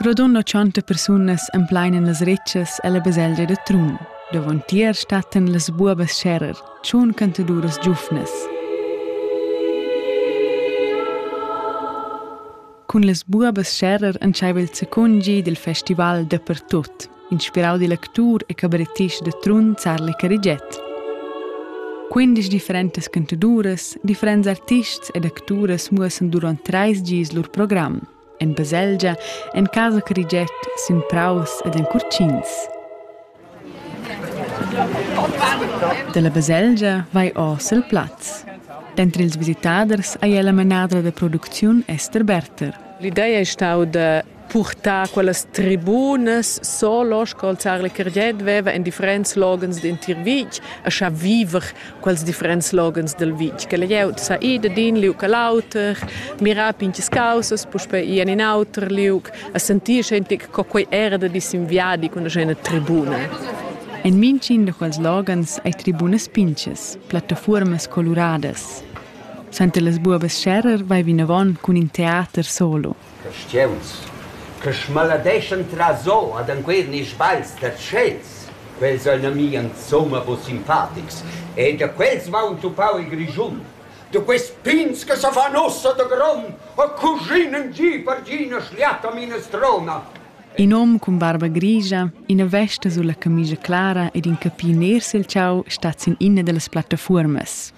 Rodond tschanta persunas emplein las retschas ella baselgia da Trun. Davontier stattan las buobas scherer, tschun cantaduras giufnas. Cun las buobas scherer entscheiva il secungi dil festival dapertut. inspirau dil actur e cabarettist da Trun Zarli Carigiet. Quindisch differentas cantaduras, differents artists ed acturas muossan durant treis gis lur program. En baselgia, en casa Carigiet, sin praus ed en curcins. Dalla baselgia vai oz el plaz. Dentro ils visitaders hai la manadra da producziun Esther Berter. L'idea è stata da purtar quellas tribunas solo sco il Zar Carget veva en differents logens d'entir vitg a scha viver quels differents logens del vitg che la glieud sa ir d'in liug a l'auter mirar pinches causas puspei ir in in auter liug a sentir schentic co quei era da disinviadi con una tribuna En mintgin da quels logens ei tribunas pinches, plattafuormas coluradas. Senta las buobas Scherrer vai vinavon cun in teater solo. Caschiuns che smaladeschan traso ad enquera ni sbagls da tschels. Quels ein a mi insumma buc simpatics e da quels va entupau il Grischun. Da quest pigns che sa fan ussa da gron e cushin in gi per gi ina schliata minestrona. In hom cun barba grigia, ina vesta sulla camigia clara ed in capi ner sil tgau stat sin ina dallas plattafuormas.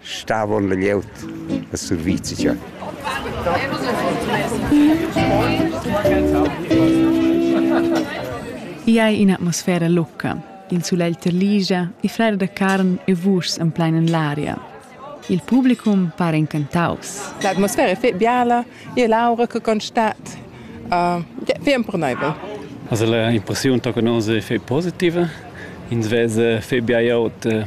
Stavon la glieud e survizia. I ha in'atmosfera locca. Il sulegl terligia, i flera da carn e vuschs en plein en l'aria. Il publicum pare incantaus. L'atmosfera è fetg biala, e l'aura che constat uh, è fetg empernaivel. Also l'impressiun che nos è fetg positiva. Ins vede fetg biaut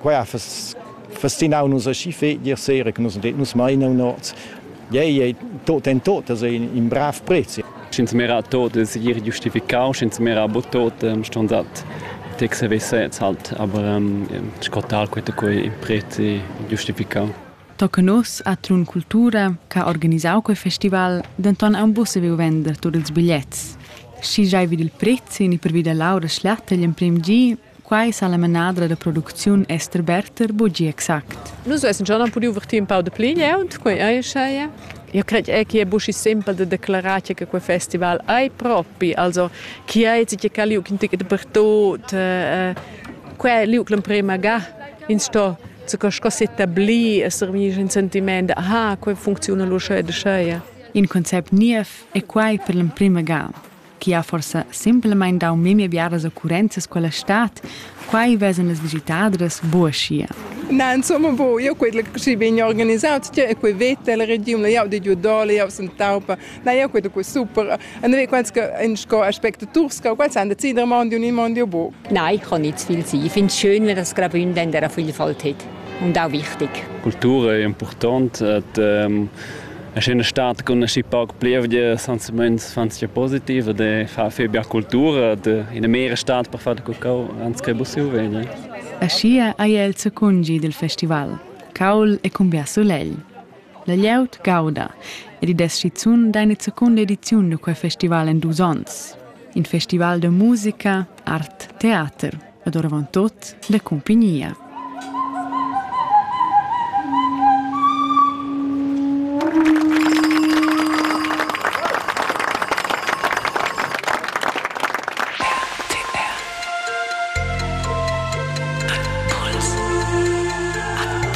Quai ha festinau nus aschi fetg ier sera che nus nus mainau nots. Ei ei tot en tot in brav prezi. Sch'ins mera tot segir giustificau, sch'ins mera bu tot ston dat tec se vesets halt, aber ähm, scotar quete quei prezi giustificau. Tocca nos atun cultura che ha organisau quei festival denton aunc buca saviu vender tut ils bigliets. Schi giai vid il prezi ni pervi da l'aura schlatta egl emprem gi Quai sa la manadra da producziun Esther Berter bugi exact. Nus vessen schon am pudiu vertir in pau de pli glieud, quei ei uscheia. Io cred è che è buschi simpel de declarar che quei festival ei propi, also chi ei tgi ca liug in tic dappertut. Quei liug l'emprema ga ins sto sco s'etablir e servir in sentiment, aha, quei funcziuna lu scheu e scheu. In concept niev è quai per l'emprema ga. chi ha forsa simplamaing dau memia biaras occurrenzas quella stad, quai vesan las visitadras bo aschia. Na, insomma, bo, io quei ci bin organisato, cioè quei vete la regiun, io di giù dole, io sono taupa, na, io quei quei super. Und wir quants in sco aspecto turska, quals han decidere mondi un in mondi bo. Nein, ich kann nicht zu viel sein. Ich finde es schön, wenn das Grabün dann der Vielfalt hat und auch wichtig. Kultur è importante, et, ehm, Aschi in stat cun aschi pauc plievgia senza meins fan sia positiv ed e fa fe bia cultura de ina mera stat per far cacau ans che busiu vegni. Aschia ei el secungi dil festival, caul e cumbia sulegl. La glieud gauda ed id es schizun deine seconda ediziun da quei festival en dus onns. In festival de musica, art, teater. ed oravontut la cumpignia.